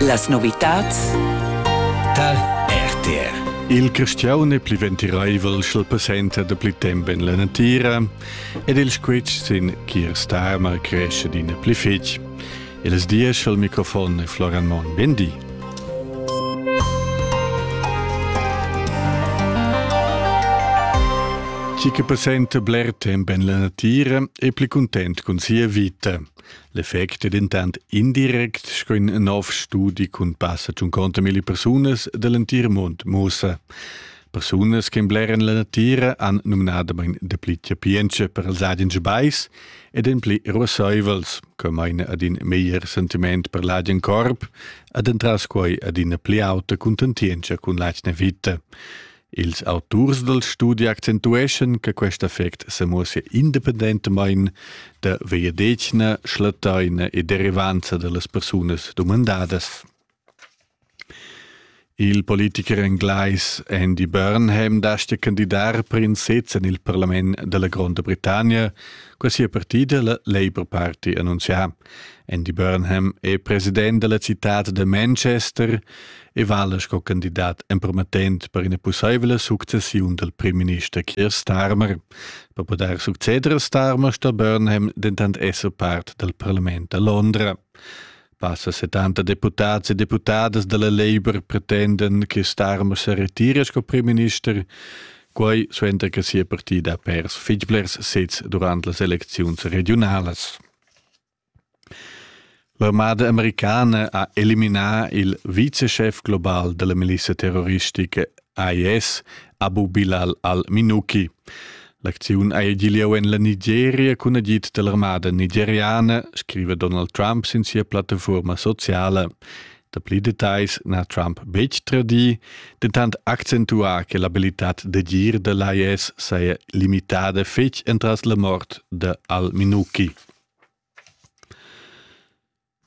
Las novitads tar RTR. Il cristiaun è pli ventiraivel sch'el passenta da pli temp en la natira ed il squitsch sin Kier Starmer cresce d'ina pli fitg. Il diesch al microfon è Florian Monn. Ben di. Chi che passenta bler temp en la natira è pli content cun sia vita. L'effect è dentant indirect, sco in nov studi cun passa tschunconta milli persunas da l'entir mund mussa. Persunas che blerran la natira han numnadamain dapli chapientscha per els agens bais ed en pli ruassaivels, co maina ad in meglier sentiment per l'agen corp ed entras quai ad ina pli auta cuntentientscha cun l'atgna vita. Ils auturs dal studi accentueschan che quest effect semuossia independentamain da vegliadetgna, schlattaina e derivanza da las persunas dumandadas. Il politicher englais Andy Burnham dastga candidar per in sez en il parlament da la Gronda Britannia, qua sia partida, la Labour Party, annunzià. Andy Burnham è president della citad de Manchester e vala sco candidat empromettent per ina possibile successiun del primminister Keir Starmer. Per poter succeder a Starmer sto Burnham dentant esser part del parlament a Londra. Passa 70 deputats e deputadas della Labour pretenden che Starmer se retira sco primminister, quai suenter che sia partida ha pers fitg blers sets durant las elecziuns regionalas. L'armada americana ha eliminà il viceschef global da la milizia terroristica IS, Abu Bilal al-Minuki. L'acziun ha gì lieu en la Nigeria cun agid da l'armada nigeriana, scriva Donald Trump sin sia plattafurma sociala. Dapli details n'ha Trump betg tradì, dentant accentuà che l'abilitad d'agir da l'IS saja limitada fetg entras la mort da al-Minuki.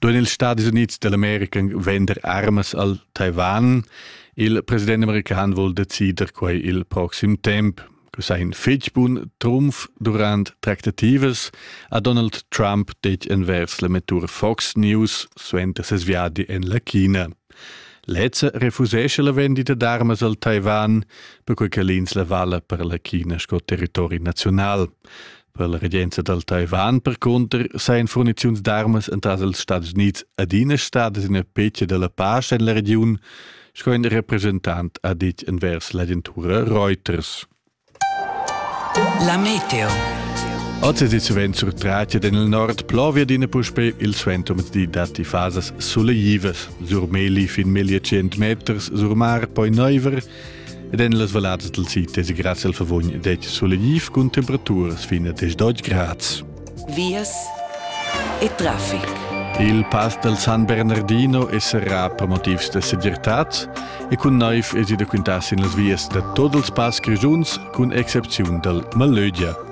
Duin ils Stadis Unids dell'America vender armas al Taiwan? Il president american vul decider quai il proxim temp. cu sa in fetg bun trumf durant tractativas ha Donald Trump detg envers la mettur Fox News suenter ses viadi en la China. Lezza refusesce la vendita d'armas al Taiwan, perquai che l'ins la vala per la China sco territori naziunal. Per la regenza dal Taiwan, percunter, sajan furniziuns d'armas entras ils Stadis Unids adina stadas ina pecha da la pace en la regiun, sco in representant ha ditg envers l'agentura Reuters. La meteo. Oz è suvent sur Tracia en nord plovia d'ina puspè il suentoms di datti fasas suleivas. Sur Meli fin 1.100 meters, sur mar poi neiver, Ed en las vallades del sid es grazie al favogn det solegliv cun temperaturas fin a 10 grads. Vias e traffic. Il pass del San Bernardino es serrà per motivs da segirtad e cun naiv es i da quintar sin las vias da tot els pass grigiuns, cun excepziun dal Malögia.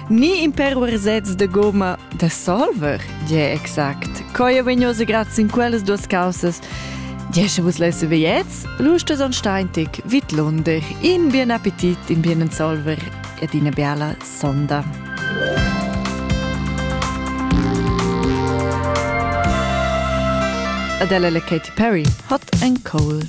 Ni in per ursets de gomma da solver, gie exact. Coia vegnosa grazie in quellas duas causas. Jesce vus lesse veiets, lustes on steintig, vit lunder, in bien appetit, in bien solver ed ina biala sonda. Adele le Katy Perry hat ein Cold.